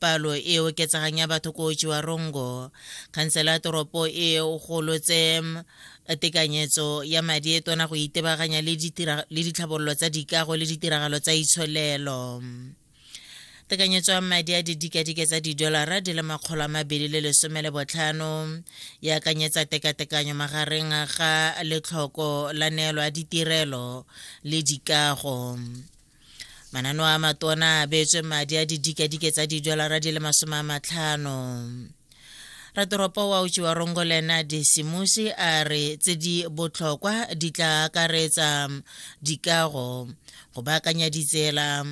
palo e oketsegang ya batho ko Chiwarongo. Khansela ya toropo e golotse tekanyetso ya madi e tona go itebaganya le ditlhabololo tsa dikago le ditiragalo tsa itsholelo tekanyetso ya madi a didikadike tsa didolara di le makgolo a mabedi le lesome le botlhano e akanyetsa tekatekanyo magareng ga letlhoko la neelo ya ditirelo le dikago manano a matona a beetswe madi a didikadike tsa didolara di le masome a matlhano ratoropo wa uchi wa rongolena disimusi a re tse di botlhokwa di tla akaretsa dikago go baakanya ditsela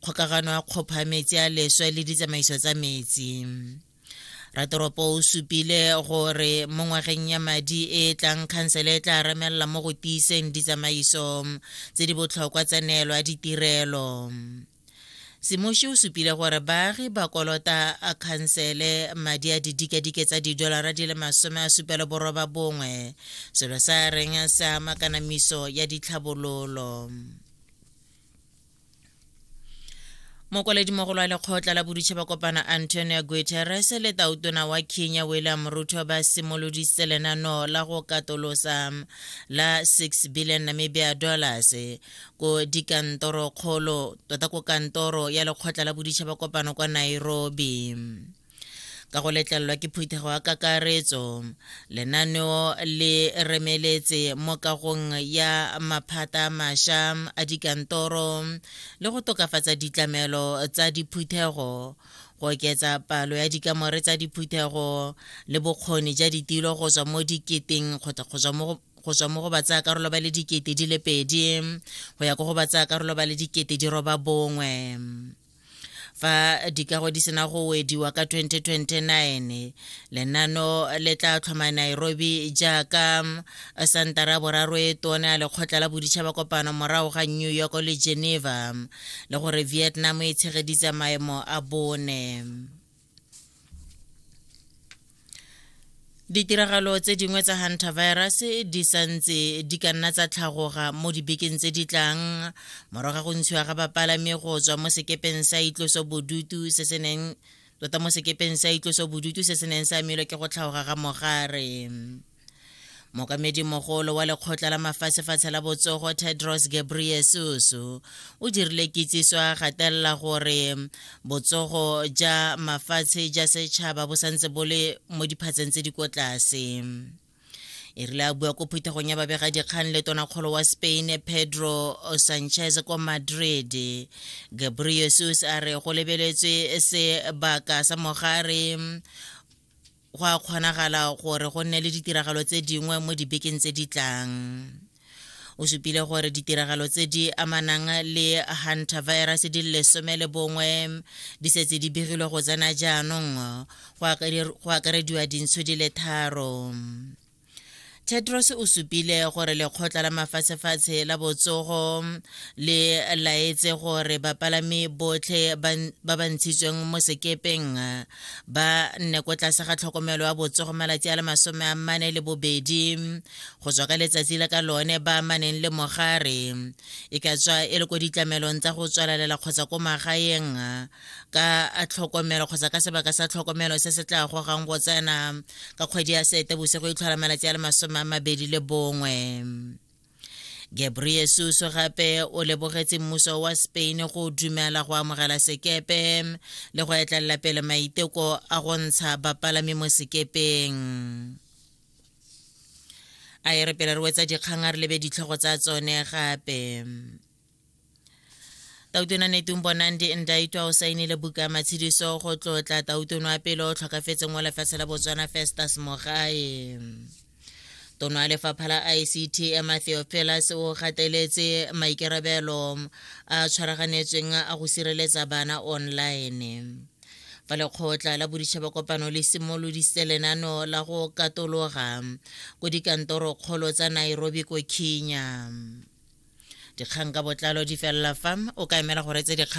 kgokagano ya kgopha metsi a leswe le ditsamaiso tsa metsi ratoropo o supile gore mo ngwageng ya madi e e tlang khansele e tla remelela mo go tiiseng ditsamaiso tse di botlhokwa tsa neelo ya ditirelo semoši o supile gore baagi ba kolota a khansele madi a didikadike tsa didolara di le masome a supelo boroba bongwe selo sa reng sa makanamiso ya ditlhabololo mokwaledi-mogolo wa lekgotla la boditšhaba kopana antonio guterres le tautona wa kenya william ruto ba simoloditse lenano la go katolosa la 6 billion namibia dollars ko dikantoro kgolo tota ko kantoro ya lekgotla la boditšhaba kopano kwa nairobi ka go letlelelwa ke phuthego ya kakaretso lenaneo le remeletse mo kagong ya maphata a masha a dikantoro le go tokafatsa ditlamelo tsa diphuthego go oketsa palo ya dikamore tsa diphuthego le bokgoni ja ditilo go tswa mo diketeng kgotsa go tswa mo go tswa mo go batsaya karolo ba le dikete di le pedi go ya ko go batsaya karolo ba le dikete di roba bongwe fa dikago di sena go wediwa ka 2029 lenano le tla tlhoma nairobi jaaka um, santara boraro e tone a lekgotla la boditšhaba kopano morago ga new york le geneva um, le gore vietnam e tshegeditse maemo a bone Ditiragalo tse dingwe tsa hantavirus di santse di ka nna tsa tlhagoga mo dibekeng tse di tlang morago ga go ntshiwa ga bapalami go tswa mo sekepeng sa itloso bodutu se se neng tota mo sekepeng sa itloso bodutu se se neng sa amilwe ke go tlhagoga ga mogare mokamedimogolo wa lekgotla la mafatshefatshe la botsogo tedros gebriesus o dirile kitsiso a gatelela gore botsogo ja mafatshe ja setšhaba bo santse bo le mo diphatseng tse di ko tlase e rile a bua ko phuthegong ya babegadikgang le tonakgolo wa spain pedro sanchez kwa madrid gabriesus a re go lebeletswe sebaka sa mogare go a kgonagala gore go nne le ditiragalo tse dingwe mo dibekeng tse di tlang o supile gore ditiragalo tse di amanang le hunter virus di lesome le bongwe di setse di begilwe go tsena jaanong go akarediwa dintsho di le tharo Tedros o supile gore lekgotla la mafatshefatshe la botsogo le laetse gore bapalami botlhe ba ba ntshitsweng mo sekepeng ba nne ko tlase ga tlhokomelo ya botsogo malatsi a le masome a mane le bobedi go tswa ka letsatsi la ka lone ba amaneng le mogare e ka tswa e le ko ditlamelong tsa go tswalelela kgotsa ko magaeng ka tlhokomelo kgotsa ka sebaka sa tlhokomelo se se tla gogang go tsena ka kgwedi ya seetebose go itlhola malatsi a le masome a mabedi le bongwe gabriesus gape o lebogetse mmuso wa spain go dumela go amogela sekepe le go etlelela pele maiteko a go ntsha bapalami mo sekepeng a e re pele re wetsa dikgang a re lebe ditlhogo tsa tsone gape tautona netung bonandi ndaitwa o saenile buka ya matshediso go tlotla tautono wa pele o tlhokafetseng wa lefatshe la botswana festus mogae tono ya lefapha la ict emma theophilus o gateletse maikarabelo a tshwaraganetsweng a go sireletsa bana online fa lekgotla la boditšhabakopano le simolodise lenano la go katologa ko dikantorokgolo tsa nairobi ko kenya dikgang ka botlalo di felela fa o ka emela go retse dikgang